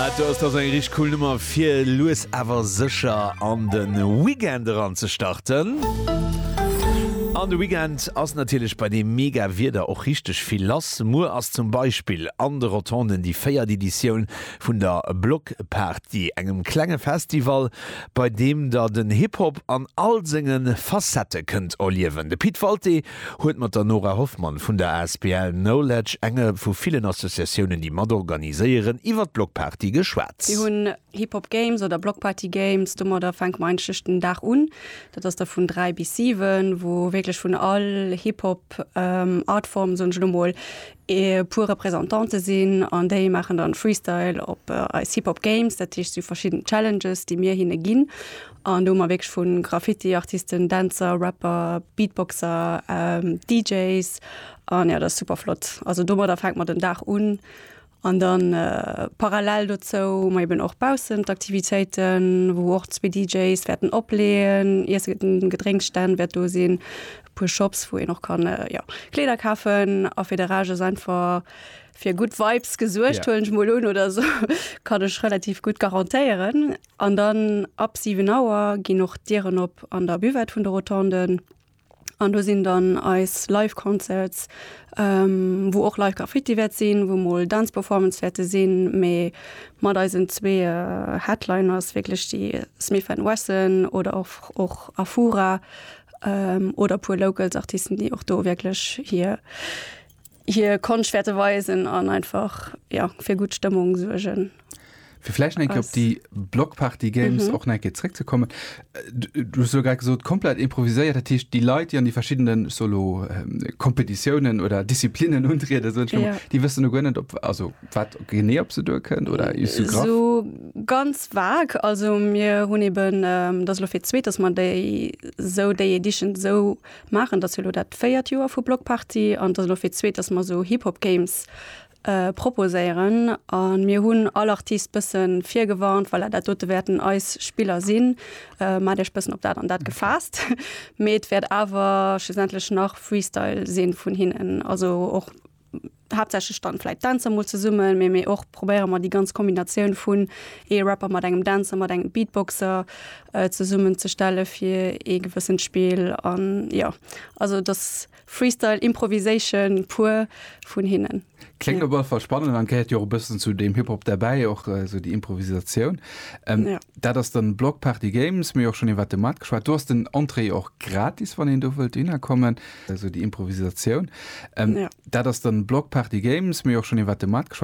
Aat do ass dach eng richteg cool Nummer fir lues awer secher an den Weekend eran ze starten. An de Weekend ass natierlech bei deem mega Wieder och richteg vill lass. Muer ass zum Beispill an de Rotonden déi véiert Editioun vun der Blockparty, engem klenge Festival bei deem der den Hip-Hop an all senge Facette kënnt erliewen. De Pit Walté huet mat der Nora Hoffmann vun der asbl Knowledge, enge vu villen Associatiounen, déi mat organiséieren, iwwer d'Blockparty geschwat. Mir hunn Hip Hop Games oder Blockparty Games. Domadder fänke mer eigentlech den Dag un. Dat ass da vun 3 bis 7, wou wierklech vun all Hip Hop Artform, soen ech elo mol, e puer Représentantë sinn an déi maachen dann Freestyle op eis Hip Hop Games. Dat heescht, et si verschidden Challenges, déi mir hinne ginn. An do hu mer wierklech vu Graffiti-Artisten, Dänzer, Rapper, Beatboxer, DJs an jo, dat ass super flott. Also domadder fänkt mer den Dag un. An dann parallel dozou hu mer eben och baussen d'Aktivitéiten, wou och zwee DJs wäerten opleeën, Iesse an Gedrénksstänn wäert do sinn, e puer Shops, wou een och kann, jo, Kleeder kafen. A fir de Rescht ass einfach fir gutt Vibes gesuergt, huelen ech mol un, oder esou kann ech relativ gutt garantéieren. An dann ab 7 Auer ginn och d'Dieren op an der Buvette vun de Rotonden. An do sinn dann eis Live Concerts, wou och Live Graffiti wäert sinn, wou mol Dance Performance wäerte sinn, mee mat eisen zwee Headliners wierklech déi Smith and Wesson oder och och Afura oder puer Locals Artisten, déi och do wierklech hir. hier Konscht wäerte weisen an einfach ja, fir gutt Stëmmung suergen. Fir vläicht enke op déi Blockparty Games mhm. och enke zréck ze kommen. Äh, du so grad gesot komplett improviséiert, dat hicht déi Leit, déi an déi verschiedenen Solo ähm, Kompetitiounen oder Disziplinen untriede so, ja. Di wëssen du gënnet op also wat genee op se duer kënnt oder is du grad? So ganz vag, also mir hunn eben ähm, dat lo fir zweet, dass man déi sou déi Edition sou maachen. Et ass jo elo dat véiert Joer vu Bloc Party an et ass elo fir d'zweet, datt mer esou Hip Hop Games proposéieren. A mir hunn all Artist bësse virgewarnt, voilà, dat dote wäerten eis Spiller sinn, maacht Iech bëssen op dat an dat gefaasst. Mee et wäert awer schlussendlech nach Freestyle si vun hinnen, also och haaptsächlech dann vläit Dänzer mol zesummen, mee mee och probéiere mer déi ganz Kombinatioun vun ee Rapper mat engem Dänzer, mat engem Beatboxer zesummenzestelle fir ee gewëssent Spill an jo. Also et ass Freestyle, Improvisation pur vun hinnen. Kléngt op alle Fall spannend an gehéiert jo och e bëssen zu deem Hip-Hop derbäi, och esou déi Improvisatioun. Ja. Dat ass dann Block Party Games, mir hu jo och schonn iwwert de Maart geschwat. Do ass den Entrée och gratis, wann een do wëllt hinnerkommen. Esou déi Improvisatioun. Dat ass dann Block Party Games. Mir hu jo och schonn iwwert de Markt geschwat.